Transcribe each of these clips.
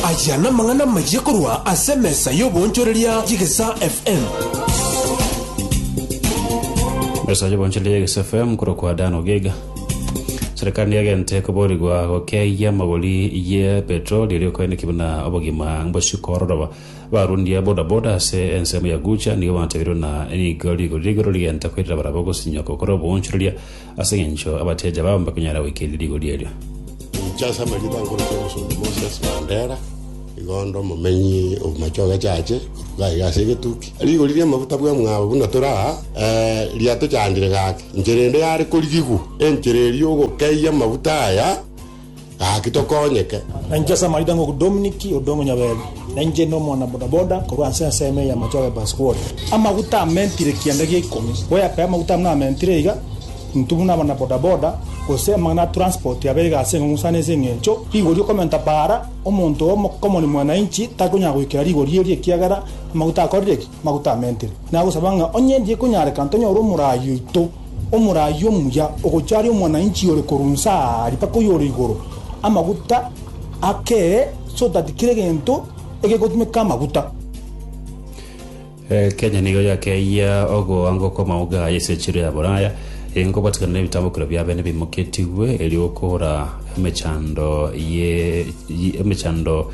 Aya namang'ana amayia korwa ase emesa y'oboonchoreria y'Egesa FM. Mesa y'oboonchoreria y'Egesa FM korokwa Dan Ogiga. Serikali niagente koborigwa gokeyia amagori ye petroli erio koeneki buna obogima mbosiko ororoba. Barundia bodaboda ase ensemo ya Gucha nigo batabirwe na nigo rigori rigoro rigenta koirera barabwo gosinyoko kore oboonchoreria Ase engencho abateja bao mbakonyara goikereria rigoria erio. Charles Amarita nkorokire omosomba Moses Mandera, igo onde omomenyi o Machoge Church, iga iga ase egetuki. Rigori ri'amaguta bw'emwabo buna tore aa, ee, riatochandire gaki, enchera ende yare korigigwa. Enchera eria ogokeyia amaguta aya. Gaki tokonyeke. Na inche ase amaita ng'oku Dominiki ode omonyabeebi, na inche inde omwana boda boda korwa ase ensemo eye y'amache ore Paskwodi. Amaguta amentire ekianda gia ikomi, goyakaya amaguta abwo namentire iga, intwe buna abana boda boda, gose amang'ana a transport abe iga ase eng'ong'o sana ase eng'encho rigori y'okomenta baara, omonto omokomori mwananchi takonyara goikera rigori erio ekiagera amaguta akorire ki? Maguta amentere. Nagosaba ng'a onye eria ekonyarekana tonyore omoraai oito, omoraai omuya, ogochia aria omwananchi ore korwa inse aaria mpaka oyore igoro, amaguta akere, so that kera egento egegotumeka amaguta. Kenya nigo yakeyia ogoangwa kw'amauga aya ase enchera ya Boraya, eye nkobwatikana n'ebitambokero biabo bende bimoketigwe, erio okora emechando ye emechando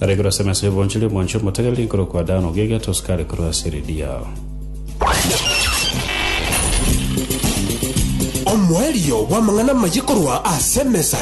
Aregure ase emesa y'obonchori omonche omotegereri nkorokwa Dan ogegete osukare korwa ase eredi yao. Omoerio bw'amang'ana amaye korwa ase emesa